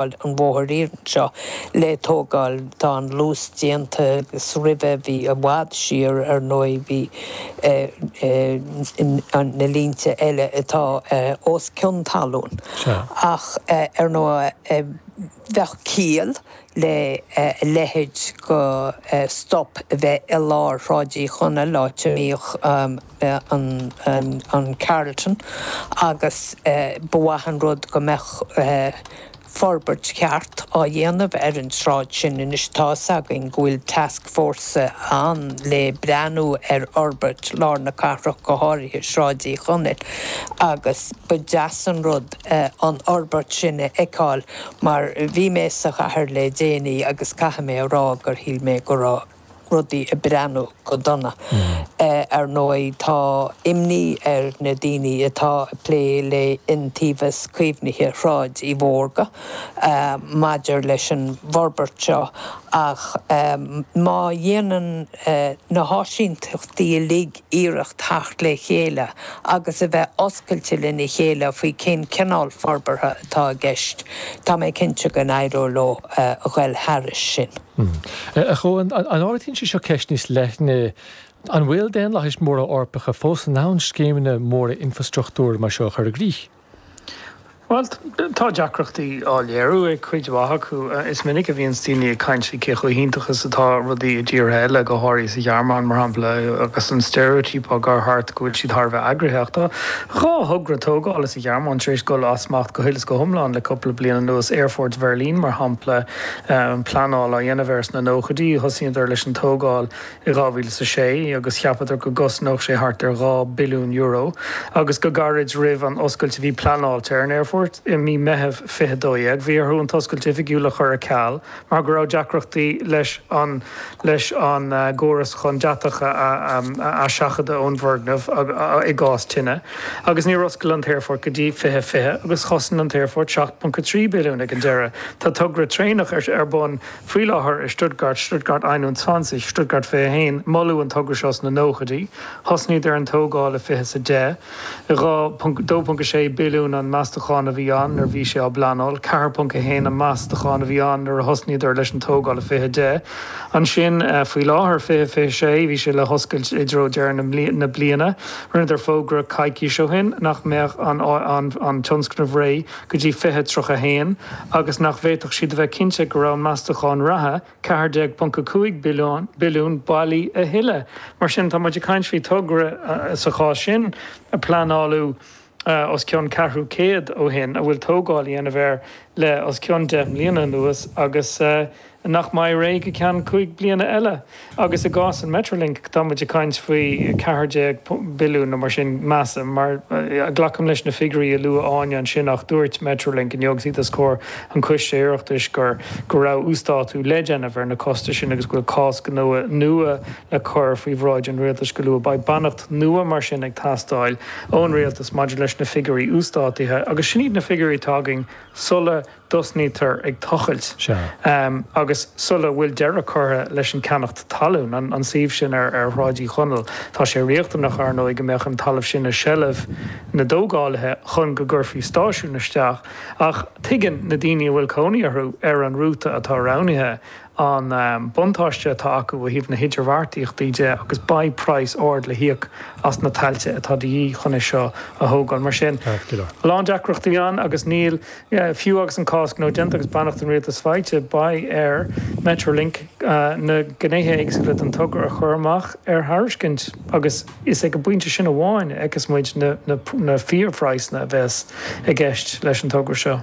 Tá an bóthar iarainn seo le tógáil, tá an luas déanta agus roimhe bhí i bhfad siar, ar ndóigh, bhí na línte eile atá os cionn talún. Ach ar ndóigh bheadh ciall le a leithéid de stop a bheith i lár Shráid Uí Chonaill, áit a mbíodh an Carlton agus ba mhaith an rud go mbeadh forbairt cheart á dhéanamh ar an tsráid sin. Anois tá 'fhios againn go bhfuil tascfhórsa ann le breathnú ar fhorbairt lár na cathrach, go háirithe Sráid Uí Chonaill, agus ba deas an rud an fhorbairt sin a fheiceáil mar bhí mé sa chathair le déanaí agus caithfidh mé a rá gur shíl mé go raibh. rudaí ag breathnú go dona. Ar ndóigh, tá imní ar na daoine atá ag plé le hIontaobhas Caomhnaithe Shráid Uí Mhórdha maidir leis an bhforbairt seo ach má dhéanann na háisínteachtaí uilig iarracht theacht le chéile agus a bheith oscailte lena chéile faoi cén cineál forbartha atá i gceist. Tá mé cinnte go n-éireoidh leo a ghoil thairis sin. A Chuain, an ardaíonn sé seo ceist níos leithne, an bhfuil daonlathais mhóra Eorpacha fós in ann scéimeanna móra infreastruchtúir mar seo a chur i gcrích? Bhuel, tá deacrachtaí á léiriú ag cuid mhaith acu. Is minic a bhíonns daoine ag caint faoi cé chomh hiontach is atá rudaí i dtíortha eile, go háirithe sa Ghearmáin, mar shampla, agus an steiréitíop á chur thart go bhfuil siad thar a bheith eagraithe. Ach tá dhá thogra tógála sa Ghearmáin tar éis dul as smacht go huile is go hiomlán le cupla bliain anuas, Aerfort Bheirlín, mar shampla, pleanáil á dhéanamh air sna nóchaidí, thosaíodar leis an tógáil i 2006 agus cheapadar go gcosnódh sé thart ar €2 billiún agus go gairid roimh an oscailt a bhí pleanáilte ar an aerfort i mí Meitheamh 2012 bhí orthu an t-oscailt oifigiúil a chur ar ceal mar go raibh deacrachtaí leis an leis an gcóras chun deatach a sheachadadh ón bhfoirgneamh i gcás tine agus níor oscail an t-aerfort go dtí 2020 agus chosain an t-aerfort 7.3 billiún ag an deireadh. Tá togra traenach ar bun. Faoi láthair i Stuttgart, Stuttgart einundzwanzig, Stuttgart 21, moladh an togra seo sna nóchaidí. Thosnaíodar ar an tógáil i 2010. 2.6 billiún an meastachán a bhí ann nuair a bhí sé á bpleanáil, 4.1 an meastachán a bhí ann nuair a thosnaíodar leis an tógáil i 20 10. Ansin, faoi láthair, 20 26, bhí sé le hoscailt i dtreo deireadh na bliana. Rinneadar fógra coicís ó shin nach mbeadh an tionscnamh réidh. go dtí 2031 agus nach bhféadfadh siad a bheith cinnte go raibh an meastachán reatha, 14.5 bil billiún, bailí a thuilleadh. Mar sin, tá muid ag caint faoi togra, sa chás sin, a pleanáladh os cionn ceathrú céid ó shin, a bhfuil tógáil á déanamh air le os cionn deich mbliana anuas agus nach mbeidh réidh go ceann cúig bliana eile, agus i gcás an Metrolink tá muid ag caint faoi 14 billiún nó mar sin, measaim, má ghlacaim leis na figiúirí a luaigh Áine ansin ach dúirt Metrolink inniu agus iad os comhair an Choiste Oireachtais gur go raibh uasdátú le déanamh ar na costais sin agus go bhfuil cás gnó nua le cur faoi bhráid an Rialtais go luath. Beidh beannacht nua mar sin ag teastáil ón Rialtas maidir leis na figiúirí uasdátaithe agus sin iad na figiúirí atá againn sula dtosnaítear ag tochailt agus sula bhfuil deireadh curtha leis an gceannacht talún, an suíomh sin ar Shráid Uí Chonaill. Tá sé riachtanach, ar ndóigh, go mbeadh an talamh sin i seilbh na dtógálaithe chun go gcuirfí stáisiún isteach, ach tuigeann na daoine a bhfuil cónaí orthu ar an rúta atá roghnaithe, an buntáiste atá acu ó thaobh na hidirbheartaíochtaí de agus beidh praghas ard le híoc as na tailte atá de dhíth chun é seo a thógáil. Mar sin, a lán deacrachtaí ann agus níl, fiú agus an cás gnó déanta agus beannacht an Rialtais faighte, beidh ar Metrolink na gnéithe éagsúla den togra a chur amach ar thairiscint agus is ag an bpointe sin amháin a fheicfeas muid na fíorphraghsanna a bheas i gceist leis an togra seo.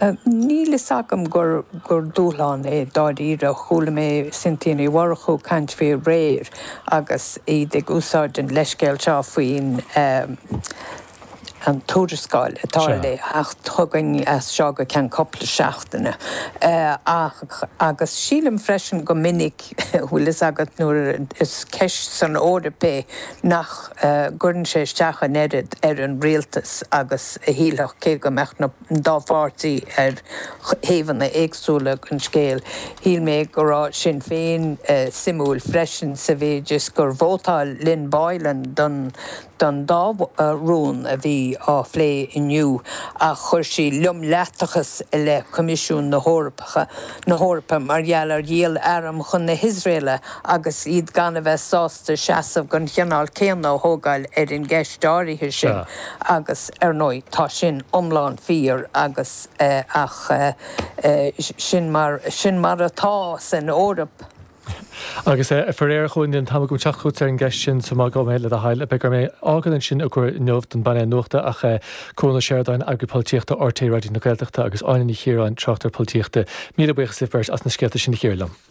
Níl a fhios agam gur dúshlán é dáiríre, chuala mé Cynthia Ní Mhurchú ag caint faoi aréir agus iad ag úsáid an leithscéal seo faoin an tuarascáil atá le teacht chugainn as seo go ceann cúpla seachtaine ach agus sílim freisin go minic, bhfuil a fhios agat nuair is ceist san Eoraip é nach. gcuireann sé isteach an oiread ar an rialtas agus a shílfeá cé go mbeadh an dá pháirtí ar thaobhanna éagsúla den scéal. Shíl mé go raibh Sinn Féin suimiúil freisin sa mhéid is gur vótáil Lynn Boylan don dá rún a bhí á phlé inniu ach chuir sí fimíneacht i leith Choimisiún na hEorpa mar gheall ar dhíol arm chun na hIosraelach agus iad gan a bheith sásta seasamh den chineál céanna a thógáil ar an gceist áirithe sin, agus ar ndóigh tá sin iomlán fíor, agus ach sin mar, sin mar atá san Eoraip. Agus faraor, níl an t-am agam teacht chugat ar an gceist sin sa má gá mé, le do thoil, beidh orm é fhágáil ansin i gcomhair inniu don bpainéal nuachta ach Cuan Ó Seireadáin, Eagarthóir Polaitíochta RTÉ Raidió na Gaeltachta agus Áine Ní Chiaráin, Tráchtaire Polaitíochta, míle buíochas libh beirt as na scéalta sin a chíoradh liom.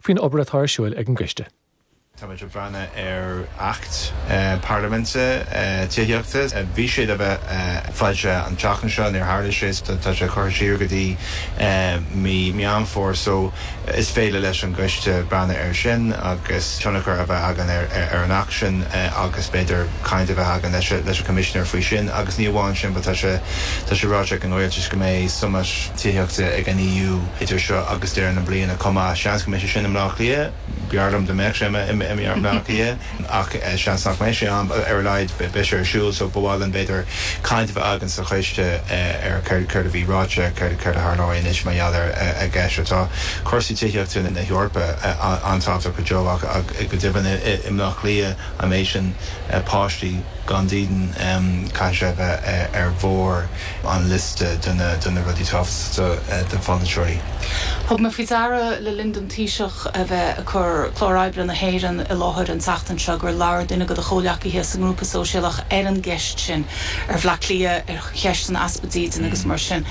faoin obair atá ar siúil ag an gCoiste. Táimid ag breathnú ar Acht Parlaiminte Tithíochta. Bhí sé le bheith ar fáil an tseachtain seo, níor tharla sé, so tá sé curtha siar go dtí mí Meán Fómhair, so is féidir leis an gCoiste breathnú air sin agus tionchar a bheith againn ar an Acht sin agus b'fhéidir caint a bheith againn leis an gCoimisinéir faoi sin. Agus ní amháin sin but tá tá sé ráite ag an Rialtas go mbeidh summit tithíochta ag an EU idir seo agus deireadh na bliana chomh maith. Seans go mbeidh sé sin i mBleá Cliath. B'bhreá liom dá mbeadh sé i mBleá Cliath ach seans nach mbeidh sé ann. Ar a laghad beidh sé ar siúl so ba mhaith linn b'fhéidir caint a bheith againn sa choiste ar céard a bhí ráite, céard a tharlóidh anois mar gheall ar an gceist seo. Tá cúrsaí tithíochta na hEorpa an-tábhachtach go deo ach go deimhin i mBleá Cliath, an méid sin páistí gan dídean, caithfidh sé a bheith ar bharr. an liosta de na de na rudaí tábhachtacha do pholaiteoirí. Thug mé faoi deara le linn don Taoiseach a bheith ag cur clár oibre na hÉireann i láthair an tseachtain seo gur labhair duine de do chomhleacaithe sa nGrúpa Sóisialach ar an gceist sin, ar Bhleá Cliath, ar cheist an easpa dídean agus mar sin.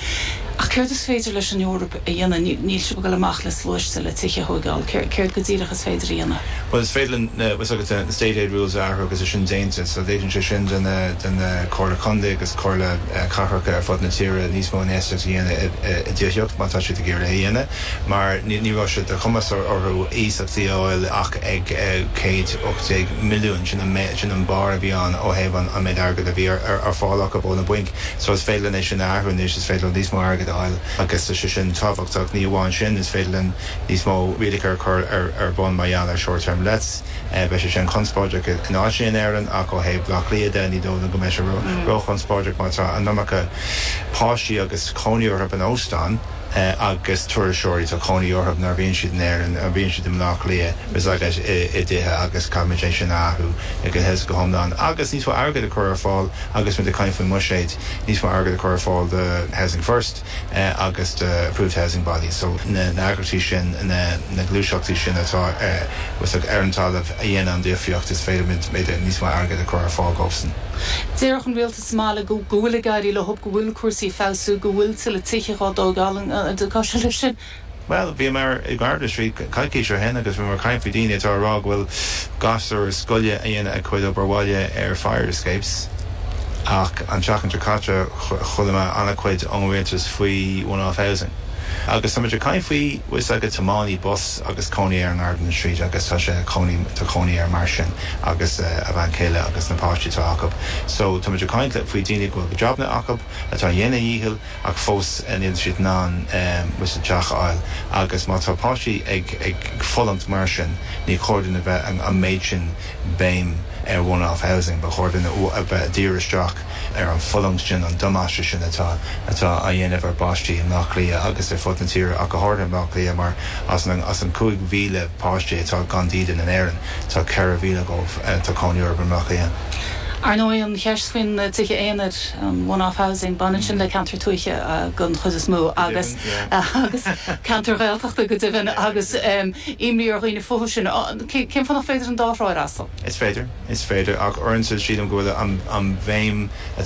Ach céard is féidir leis an Eoraip a dhéanamh, níl sibh ag dul amach le sluaiste le tithe a thóigeáil, céard go díreach is féidir a dhéanamh? Bhuel is féidir linn, tá a fhios agat na State Aid Rules a athrú agus é sin déanta, so ligeann sé sin do na, do na Comhairle Contae agus Comhairle Cathracha ar fud na tíre níos mó infheistíocht a dhéanamh i dtithíocht má tá siad ag iarraidh é a dhéanamh mar ní, ní raibh sé de chumas orthu iasachtaí a fháil ach ag céad ocht déag milliúin, sin an, sin an barr a bhí ann ó thaobh an méid airgead a bhí ar fáil acu ó na bainc. So is féidir linn é sin a athrú anois, is féidir linn níos mó airgead a fháil agus tá sé sin tábhachtach. Ní amháin sin, is féidir linn níos mó rialacha a chur ar bun mar gheall ar short term lets. Beidh sé sin conspóideach in áiteanna in Éirinn ach ó thaobh Bhaile Átha Cliath de ní dóigh liom go mbeidh sé ró-chonspóideach mar tá an iomarca páistí agus cónaí orthu in óstáin. agus turasóirí, tá cónaí orthub nuair a bhíonn siad in Éirinn, bíonn siad i mBleá Cliath, tá siad i dtithe agus caithfimid é sin a athrú go huile go hiomlán agus níos mó airgid a chur ar fáil agus muid ag caint faoin mbuiséad, níos mó airgid a chur ar fáil do Housing First agus do Approved Housing Bodies, so na heagraíochtaí sin, na gluaiseachtaí sin atá ar an talamh a dhéanann an difríocht is féidir muid níos mó airgid a chur ar fáil dóibhsan. Is maith liom go bhfuil ag éirí leo, go bhfuil cúrsaí ag feabhsú, go bhfuil tuilleadh tithe á dtógáil in aice leis sin. Bhuel, bhíomar i Gardiner Street coicís ó shin agus bhíomar ag caint faoi daoine atá ag rá go bhfuil gasúir scoile ag déanamh a cuid obair bhaile ar fire escapes ach an tseachtain seo caite chuala mé an-chuid ón rialtas faoi one off housing agus táimid ag caint faoi, tá a fhios agat, tiománaí bus agus cónaí air i nGardiner Street agus tá sé tá cónaí air mar sin. agus a bhean chéile agus na páistí atá acu. So, tá muid ag caint le, faoi daoine go bhfuil jabanna acu, atá ag dhéanamh a dhícheall ach fós níl siad in ann teach a fháil agus má tá páistí ag fulaingt mar sin ní chóir dúinn a bheith an méid sin béim ar one-off housing, ba chóir dúinn a bheith ag díriú isteach ar an fulaingt sin, an damáiste sin atá atá á dhéanamh ar bpáistí i mBleá Cliath agus ar fud na tíre ach go háirithe i mBleá Cliath mar as an 5,000 páistí atá gan dídean in Éirinn, Tá 4,000 acu, tá cónaí orthu i mBleá Cliath. Ar ndóigh, an cheist faoi na tithe aonair, an one-off housing, baineann sin le ceantair tuaithe den chuid is mó agus agus ceantair Ghaeltachta go deimhin agus imní ar dhaoine fúthu sin. Cén fáth nach féidir an dá thrá a fhreastal? Is féidir. Is féidir. Ach uaireanta sílim go bhfuil an bhéim atá